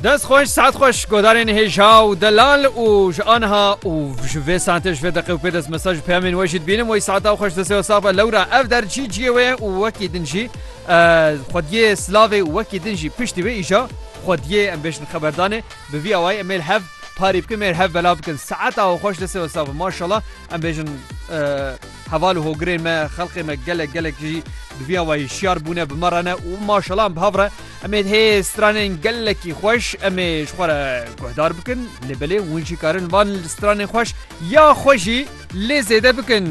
Dest xweş saet xweş godarên hêja û delal û ji anha û ji vê saetê ji vê deqe û pê dest mesaj ji peyamên we jî dibînim wê saeta xweş destê we safa lewra ev derçî ciyê wê û wekî din jî xwediyê silavê û wekî din jî piştî wê îja xwediyê em bêjin xeberdanê bi vî awayê em êl hev parî bikin mêr hev bela bikin saeta xweş destê we safa maşala em bêjin Heval û hogirên me, xelkê me gelek gelek jî bi vî ava hişyar bûne, bi me re ne û maşalan bi hav re em ê hê stranên gelekî xweş em ê ji xwe re guhdar bikin lê belê hûn jî karin van stranên xweş ya xwe jî lê zêde bikin.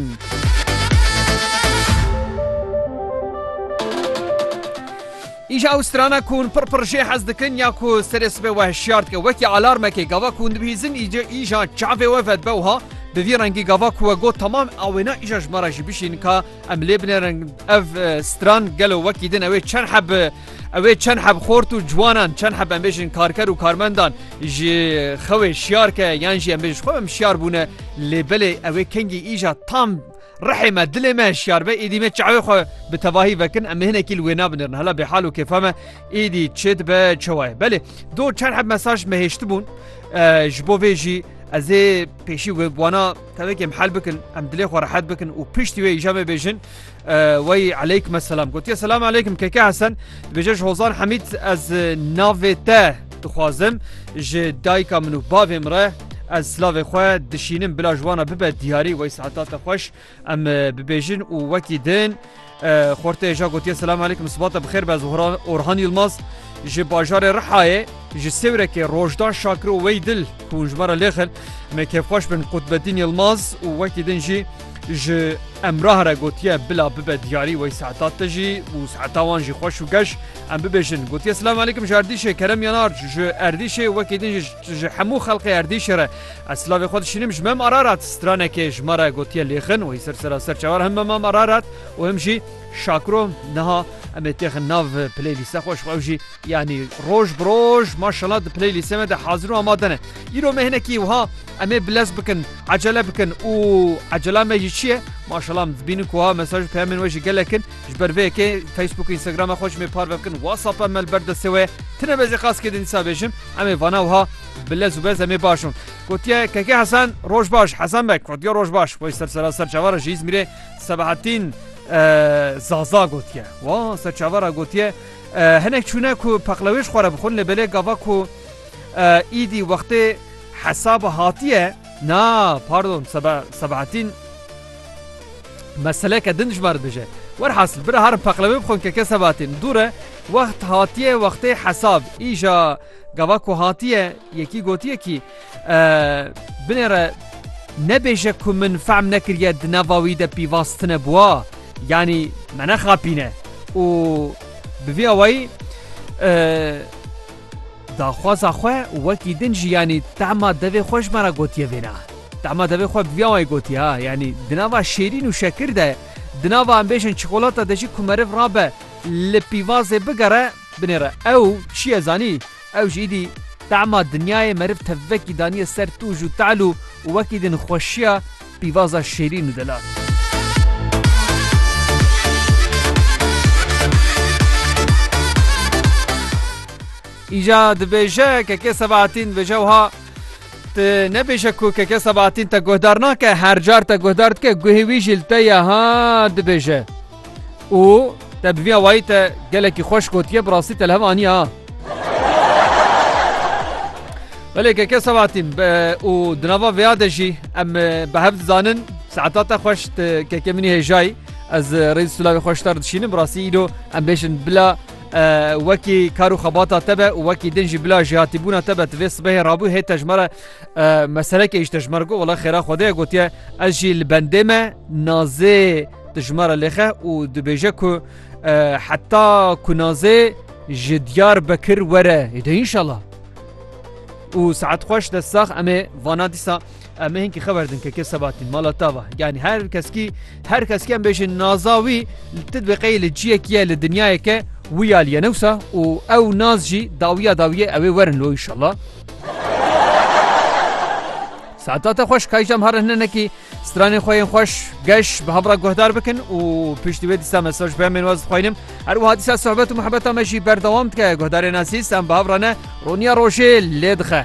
Îja ew strana ku hûn pir pir jê hez dikin ya ku serê sibê we hişyar dike wekî alarmekê gava ku hûn dibihîzin îca îja çavê we vedibe wiha bi vî rengî gava ku we got temam a wêna îja ji me re jî bişîn ka em lê binêrin ev stran gelo wekî din ewê çend heb ewê çend heb xort û ciwanan çend heb em bêjin karker û karmendan ji xewê şiyar ke yan jî em bêjin xwe em şiyar bûne lê belê ewê kengî îja tam Rihê me, dilê me hişyar be, êdî me çavê xwe bi tevahî vekin, em hinekî li wê nabinirin. Hela bêhal û kêfa me êdî çê dibe çewa ye. Belê do çend heb mesaj me hêştibûn ji bo vê jî ez ê pêşî wê wana tevek em hel bikin, em dilê xwe rehet bikin û piştî wê îja me bêjin wey eleykum selam. Gotiye selam eleykum keke Hesen dibêje ji hozan Hemîd ez navê te Dixwazim ji dayika min û bavê min re ez silavê xwe dişînim bila ji wan re bibe diyarî weysaeta te xweş em bibêjin û wekî din xortê ja gotiye selam aleykum sibata bi xêr be Orhan Yilmaz ji bajarê Rihayê ji sêwrekê rojdan şakir û wey dil hûn ji me re lêxin me kêfxweş bin Qutbedîn Yilmaz û wekî din jî ji emrah re gotiye bila bibe diyarî wey saeta te jî û saeta wan jî xweş û geş Em bibêjin gotiye Silam aleykum ji Erdîşê kerem yan arc ji Erdîşê wekî din ji ji hemû xelqê Erdîşê re ez silavê xwe dişînim ji Mem Ararat stranekê ji me re gotiye lêxin wî ser sera ser çavar him Mem Ararat û him jî şakro niha em ê têxin nav playlîste xwe ji xwe ew jî yanî roj bi roj maşallah di playlîstê me de hazir û amade ne îro me hinekî wiha em ê bilez bikin ecele bikin û ecela me jî çi ye maşallah em dibînin ku ha mesaj peyamên we jî gelekin Ji ber vê yekê Facebook û Instagramê xwe ji me parve bikin, WhatsAppê me li ber destê wê ye. Ti nebezê qas kê din dîsa bêjim, em ê vana wiha bi lez û bez em ê baş in. Gotiye Keke Hesen roj baş, Hesen Beg gotiye roj baş. Wê ser sera ser çavara ji Îzmîrê Sebahattin Zaza gotiye. Wa ser çavara gotiye hinek çûne ku peqlewêj xwe re bixwin lê belê gava ku îdî wextê hesaba hatiye na pardon Sebahattin Meseleke din ji me re dije. Werhasil bira herin peqlewê bixwin ke kes hebatîn. Dûr e, wext hatiye wextê hesab. Îja gava ku hatiye yekî gotiye kî binê re nebêje ku min fehm nekiriye di nava wî de pîvaz tune bûa yanî me nexapîne û bi vî awayî Daxwaza xwe wekî din jî yanî tehma devê xwe ji me re gotiye vêna. Tehma devê xwe bi vî awayî gotiye ha yanî di nava şêrîn û şekir de, di nava em bêjin çikolata de jî ku meriv rabe li pîvazê bigere binêre ew çiye zanî ew ji îdî tehma dinyayê meriv tevvekî daniye ser tûj û te'l û wekî din xweşiya Pîvaza şêrîn û delal. Îja dibêje keke sebatîn bêje wiha Te nebêje ku keke sebatîn te guhdar nake her car te guhdar dike guhê wî jî li te ye ha dibêje. û te bi vî awayî te gelekî xweş gotiye bi rastî te li hev aniye ha. Belê keke Sebahatîn û di nava vêya de jî em bi hev dizanin saeta te xweş tu keke min î hêjayî ez rêz silavê xweş te re dişînim bi rastî îro em bêjin bila wekî kar û xebata te be û wekî din jî bila jêhatîbûna te be tu vê sibehê rabû hê te ji me re meseleke îşte ji me re got wela xêra xwedê ye gotiye ez jî li bendê me nazê Dijmara lêxe û dibêje ku heta kunazê ji diyar bekir were de inşallah. û saet xweş de sax emê vana dîsa emê hinkî xeber din keke sebatîn mala tava yanî her keskî her keskî em bêjin naza wî ti bi qey li ciyekî li dinyayeke wî aliye newsa û ew naz jî dawiya dawiye ewê werin lo inşallah Saata te xweş kaycam harine nekî Stranên xwe yên xweş geş bi hemra guhdar bikin û piştî wê dîsa mesaj peyamên waz dixwînim. Her wiha dîsa sohbet û muhebeta me jî berdewam dike. Guhdarên Asîs em bi hemra ne roniya rojê lê dixe.